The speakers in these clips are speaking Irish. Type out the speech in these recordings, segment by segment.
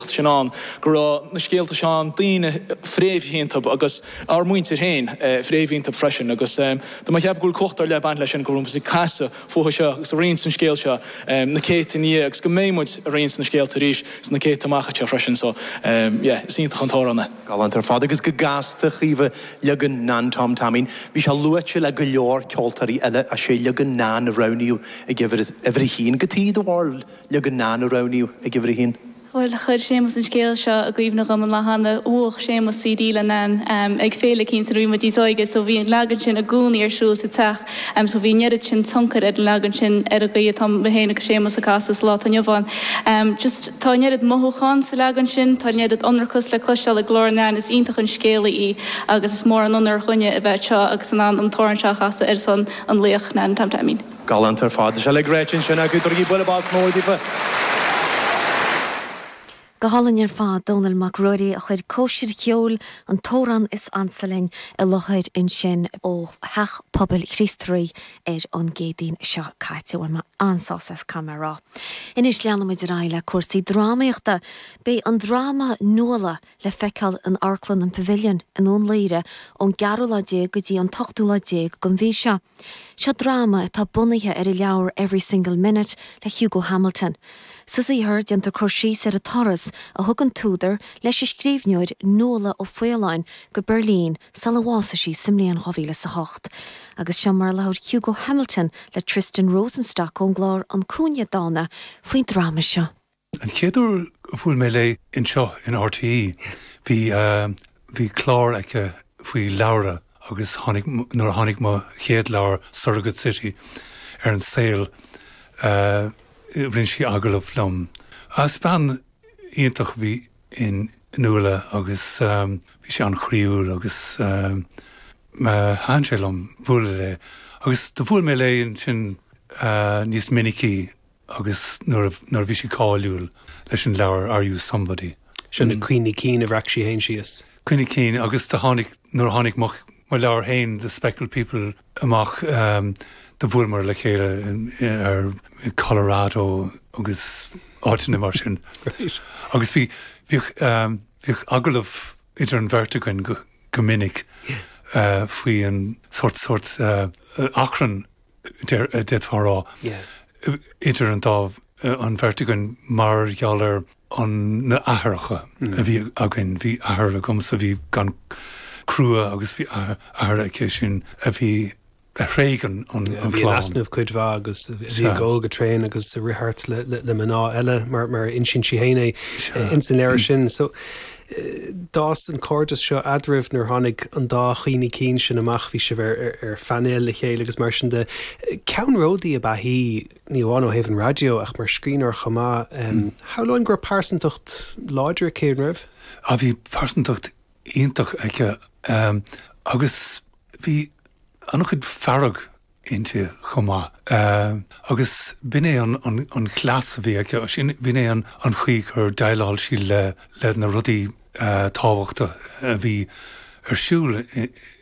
sin ann go raibh na scéalta seo ann, daoine fréamhaithe iontu agus ár muintir féin fréamhaithe iontu freisin agus dá gceapfá go bhfuil cumhacht ar leith ag baint leis sin, go bhfuil muid ag casadh fúthu seo agus ag roinnt an scéal seo na céadta ina dhiaidh agus go mbeidh muid ag roinnt na scéalta arís sna céadta amach anseo freisin so yeah is iontach an t-amhrán é. Galánta ar fad agus go gasta Caoimhe leagan Nan Tom Teaimín. Bhí sé luaite le go leor ceoltóirí eile ach sé leagan Nan a roghnaíodh ag uimhir a haon cad é do bharúil. Leagan Nan a roghnaíodh ag uimhir a haon. Bhuel, chuir Séamas an scéal seo i gcuimhne dhom an lá cheana. Bhuach Séamas CD le Nan ag féile éicínt nuair a bhí muid níos óige so bhí an leagan sin i gcónaí ar siúl sa teach so bhí an oiread sin tionchair ag an leagan sin ar an gcaoi a bhfuil mé féin agus Séamas ag casadh sa lá atá inniu ann. Just tá an oiread mothúchán sa leagan sin, tá an oiread ionracas le cloisteáil i glór Nan, is iontach an scéalaí í agus is mór an onóir dhuinne a bheith anseo agus in ann an t-amhrán seo a chasadh ar son an laoch Nan Tom Teaimín. Galánta ar fad. Tá sé uilig ráite ansin acu. Tugaigí bualadh bos mór daofa. Go hálainn ar fad. Dónall Mac Ruairí a chuir Cóisir Cheoil, An tAmhrán is Ansa Linn, i láthair ansin ó Theach Pobail Chríost Rí ar an gCéadaoin seo caite. Bhain mé an-sásamh as, caithfidh mé a rá. Anois leanfaidh muid ar aghaidh le cúrsaí drámaíochta. Beidh an dráma Nuala le feiceáil in Amharclann an Pavilion i nDún Laoghaire ón gceathrú lá déag go dtí an t-ochtú lá déag den mhí seo. Seo dráma atá bunaithe ar an leabhar Every Single Minute le Hugo Hamilton. Sa saothar, déantar cur síos ar an turas a thug an t-údar leis an scríbhneoir Nuala O'Faolain go Beirlín sula bhásaigh sí sa mbliain dhá mhíle is a hocht. Agus seo mar a labhair Hugo Hamilton le Tristan Rosenstock ón gclár An Cúinne Dána faoin dráma seo. An chéad uair a bhuail mé léi anseo in RTÉ bhí, bhí clár aici faoi leabhra agus tháinig, nuair a tháinig mo chéad leabhar Surrogate City ar an saol rinne sí agallamh liom. Is bean iontach a bhí in Nuala agus bhí sí an-chroíúil agus thaitin sé liom bualadh léi agus bhuail mé léi ansin níos minicí. agus nuair a bhí sí cáiliúil leis an leabhar Are You Somebody? Sin na cuimhní cinn a bhreac sí féin síos. Cuimhní cinn agus do tháinig, nuair a tháinig mo leabhar féin The Speckled People amach, do bhuaileamar le chéile i Colorado agus áiteanna mar sin agus bhí, bhíodh, bhíodh agallamh idir an bheirt againn go minic faoi an sórt, sórt achrann d'fhéadfá a rá, idir an dá, an bheirt againn mar gheall ar an, na aithreacha a bhí againn, bhí athair agamsa a bhí an-chrua agus bhí athair aici sin a bhí a thréig an clann. Yeah, bhí in easnamh cuid mhaith agus bhí ag gol go tréan agus ag rith thart le mná eile mar a insíonn sí féin é ins an leabhar sin. So, D'fhás an cairdeas seo eadraibh nuair tháinig an dá chuimhní cinn sin amach, bhí sibh ar phainéal le chéile agus mar sin de. Ceannródaí ab ea í, ní amháin ó thaobh an raidió ach mar scríbhneoir chomh maith. Shamhlóinn go raibh pearsantacht láidir aici, an raibh? Á bhí pearsantacht iontach aici agus bhí an-chuid fearg inti chomh maith. Agus b'in é an cleas a bhí aici, b'in é an chaoi gur dhéileáil sí le na rudaí tábhachtacha a bhí ar siúl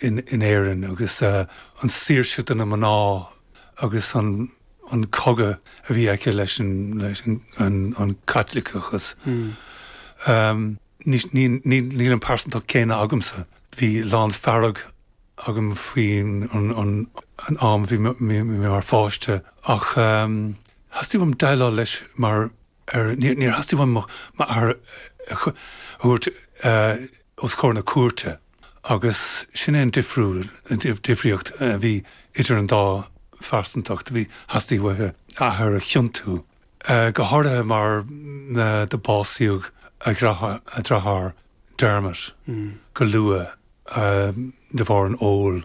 in Éirinn agus an saoirse do na mná agus an cogadh a bhí aici leis an Chaitliceachas. Níl an pearsantacht chéanna agamsa, bhí lán fearg agam faoin an am a bhí mé mar pháiste ach theastaigh uaim déileáil leis mar fhear, níor theastaigh uaim m'athair a thabhairt os comhair na cúirte agus sin é an difríocht a bhí idir an dá phearsantacht, theastaigh uaithe a hathair a chiontú. go háirithe mar do básaíodh a deartháir Dermot go luath de bharr an óil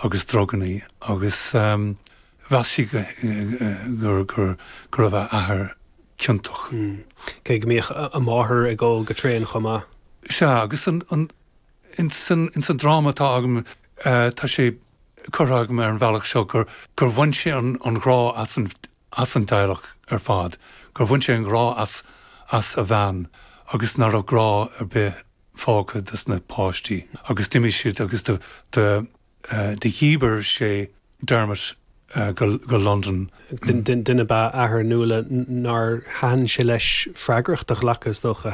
agus druganna agus mheas sí go raibh a hathair ciontach. Cé go mbíodh a máthair ag ól go tréan chomh maith. Sea, agus ins an dráma atá agam tá sé curtha agam ar an bhealach seo gur bhain sé an grá as an as an dteaghlach ar fad, gur bhain sé an grá as a bhean agus nach raibh grá ar bith fágtha dos na páistí agus d'imigh siad agus do dhíbir sé Dermot go Londain. Duine ba ea athair Nuala nár thaitin sé leis freagracht a ghlacadh, is dócha.